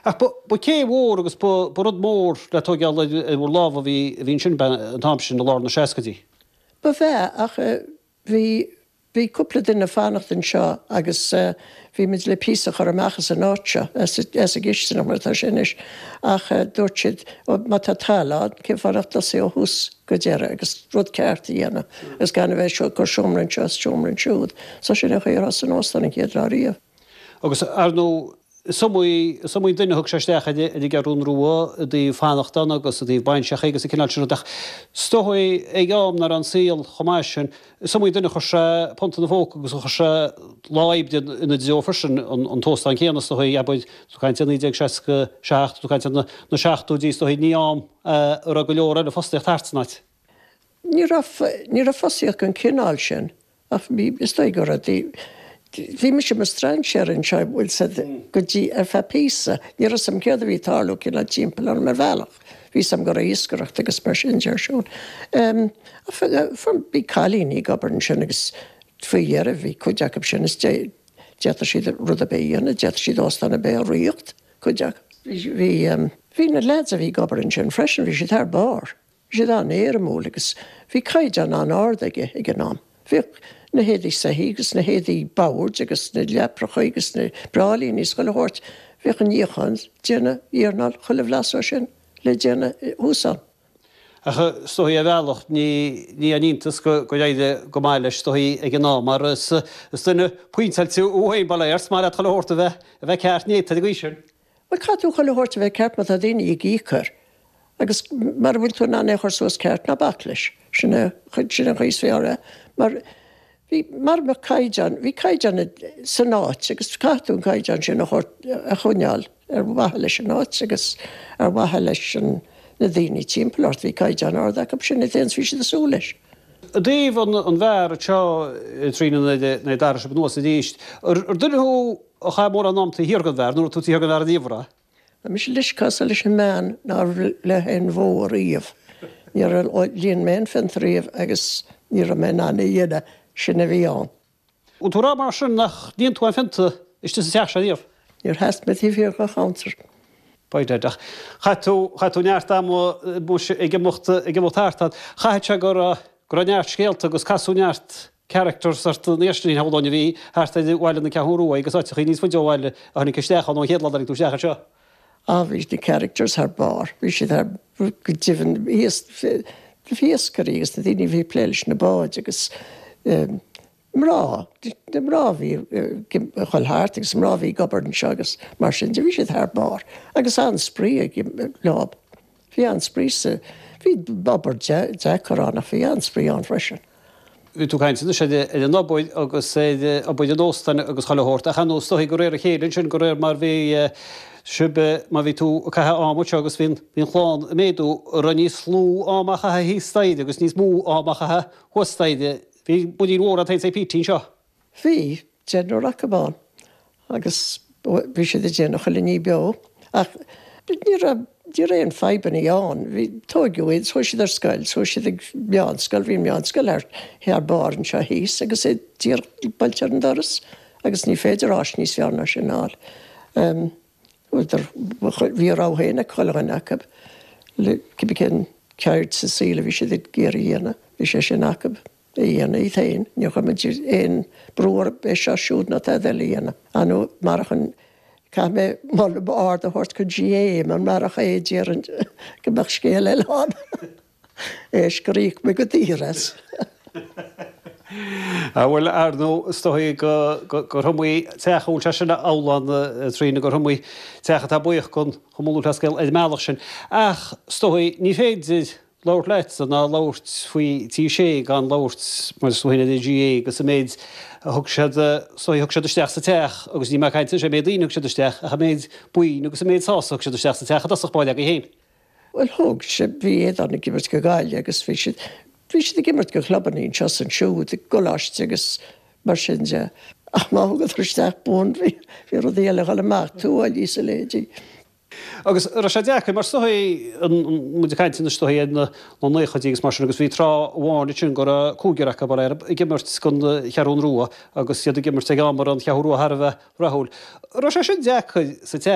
Ach ba chéim mhór agus ba rud mór le tóigeáil ar bhur lámha a bhí ansin an t-am sin i lár na seascaidí. Ba ea, ach bhí, bhí cúpla duine ag fanacht anseo agus bhí muid le píosa a chur amach as an áit seo, as an gcistineach mar atá sé anois, ach dúirt siad ó má tá talamh ann cén fáth nach dtosaí ó thús go deireadh agus rud ceart a dhéanamh agus gan a bheith ag cur seomra anseo is seomra ansiúd. So sin é an chaoi ar thosaigh an óstán an chéad lá riamh. Agus, ar ndóigh, is iomaí is iomaí duine a thug sé isteach ar an gCeathrún Rua i dtaobh fanacht ann agus i dtaobh bainseacha agus an cineál sin rud ach is dóigh ag am nach raibh an saol chomh maith sin, is iomaí duine a chuir sé punt ina phóca agus a chuir sé lá oibre ina dtreo freisin. An t-óstán céanna, is dóigh, abair, tá tú ag caint ar 1967, tá tú ag caint ar na seachtóidí, is dóigh, ní am a raibh go leor eile fostaíocht thart san áit. Ní raibh, ní raibh fostaíocht den chineál sin Ach bhí, is dóigh go raibh. Bhí mise i mo strainséir anseo an bhfuil a fhios agat ar feadh píosa. Ní raibh a fhios agam céard a bhí ag tarlú cineál timpeall orm ar bhealach. Bhí a fhios agam go raibh iascaireacht agus mar sin de ar siúl. Bhí cailíní ag obair ansin agus faoi dheireadh bhí cuid acu sin is d'fhéadfadh siad rud ar bith a dhéanamh, d'fhéadfadh siad óstán ar bith a ríocht, cuid acu. Bhí, bhí na lads a bhí ag obair ansin freisin, bhí siad thar barr. Bhí siad an-éirimiúil agus bhí caighdeán an-ard aige ag an am. Bhíodh na héadaí soithí agus na héadaí boird agus na leaprachaí agus na bráillíní is chuile shórt, bhíodh an níochán, déanamh, iarnáil, chuile bhlas dhó sin le déanamh thuas ann. Ach is dóigh ar bhealach, ní haon iontas gur éirigh go maith leis is dóigh ag an am mar is duine pointeáilte thú féin, ba léir, is maith leat chuile shórt a bheith ceart néata ar an gcaoi sin. Bhuel, caithfidh tú chuile shórt a bheith ceart má tá daoine ag íoc air agus mara bhfuil tú in ann é a chur suas ceart, ná bac leis. Sin é an chaoi is fearr é mar bhí, mara mbeadh caighdeán, bhí caighdeán san áit agus caithfidh tú an caighdeán sin a thabhairt, a choinneáil ar mhaithe leis an áit agus ar mhaithe leis an, na daoine timpeall ort. Bhí caighdeán ard acu, sin é an t-aon is bhí siad ag súil leis. I dtaobh an bheáir seo i dtrí na naoi dara sib anuas arís, ar duine thú a chaith mórán ama taobh thiar den bheár, nó an raibh tú taobh thiar den bheár ariamh? Tá mise cosúil leis an mbean nár bhligh aon bhó ariamh. Níor líon mé aon phionta riamh agus ní raibh mé in ann a dhéanamh, sin a bhí ann. An bhfuil tú a rá mar sin nár líon tú aon phionta istigh sa teach seo riamh? Níor sheas mé taobh thiar dho chuntar. B'fhéidir, ach chaith tú, chaith tú neart ama muis ag imeacht, ag imeacht thart ann. Chaithfeadh sé go raibh, go raibh neart scéalta agus casadh neart characters ort na hiascairí shamhlóinn a bhí thart ar Bhaile na Ceathrún Ruaidh agus áiteachaí níos faide ó bhaile a tháinig isteach ann ón gcéad lá a tháinig tú isteach anseo. Ah bhí na characters thar barr, bhí siad thar, go deimhin ias, na hiascairí agus na daoine a bhí ag plé leis na báid agus eh mná, na mná a bhí ag dul thart agus mná a bhí ag obair anseo agus mar sin de, bhí siad thar barr agus an-spraoi leo. Bhí an-spraoi sa, bhí obair deacair ann ach bhí an-spraoi ann freisin. Bhí tú ag caint anois ar an obair agus ar obair an óstáin agus chuile shórt ach ar ndóigh is dóigh de réir a chéile ansin, de réir mar bhí sibh, mar bhí tú ag caitheamh ama anseo agus bhí an chlann ag méadú, an raibh níos lú ama á chaitheamh thíos staighre agus níos mó ama á chaitheamh thuas staighre. Bhí muirín mhór agat féin is ag pící anseo. Bhí deichniúr acu ann agus bhí siad ag déanamh chuile ní beo ach ní raibh aon fadhbanna ann. Tóigeadh iad, chuaigh siad ar scoil, chuaigh siad ag meánscoil, bhí meánscoil thar barr anseo thíos agus é díreach buailte ar an doras agus ní féidir áis níos fearr ná sin a fháil. Bhí a rogha féin ag chuile dhuine acu, cibé cén cheird sa saol a bhí siad ag iarraidh a dhéanamh, bhí sé sin acu. a dhéanamh iad féin. Níor chuir muid aon brú orthu é seo siúd ná tada eile a dhéanamh. Ar ndú, marach an, caithfidh mé moladh ard a thabhairt gon GAA, mar marach é, déarfainn go mbeadh scéal eile ann. Tar éis gur íoc muid go daor as. Á bhuel, ar ndú, is dóigh gur hiomaí teach a bhfuil sé sin amhlaidh ann, Tríona, gur hiomaí teach atá buíoch den Chumann Lúthchleas Gael ar an mbealach sin. Ach, is dóigh, ní féidir. labhairt leatsa ná labhairt faoi Tigh Sé gan labhairt mar is dóigh ar an GAA agus an méid a thug siad sa, thug siad isteach sa teach agus níl mé ag caint cé mhéad daoine thug siad isteach ach an méid boinn agus an méid sásamh thug siad isteach sa teach i dtosach báire agaibh féin. Bhuel thug siad bhí Aodán ag imirt go Gaillimh agus bhí siad bhí siad ag imirt go chlubanna anseo is ansiúd i gcoláiste agus mar sin de ach má thugadar isteach boinn bhí bhí rudaí eile a dhul amach tuáillí is éadaí. Agus raibh sé deacair mar is dóigh, muid ag caint anois is dóigh ar na naochaidí agus mar sin agus bhí tráth amháin ansin go raibh cúigear acu b'fhéidir ag imirt gon Cheathrún Rua agus iad ag imirt ag am a raibh an Cheathrú Rua thar a bheith rathúil. Raibh sé sin deacair sa te.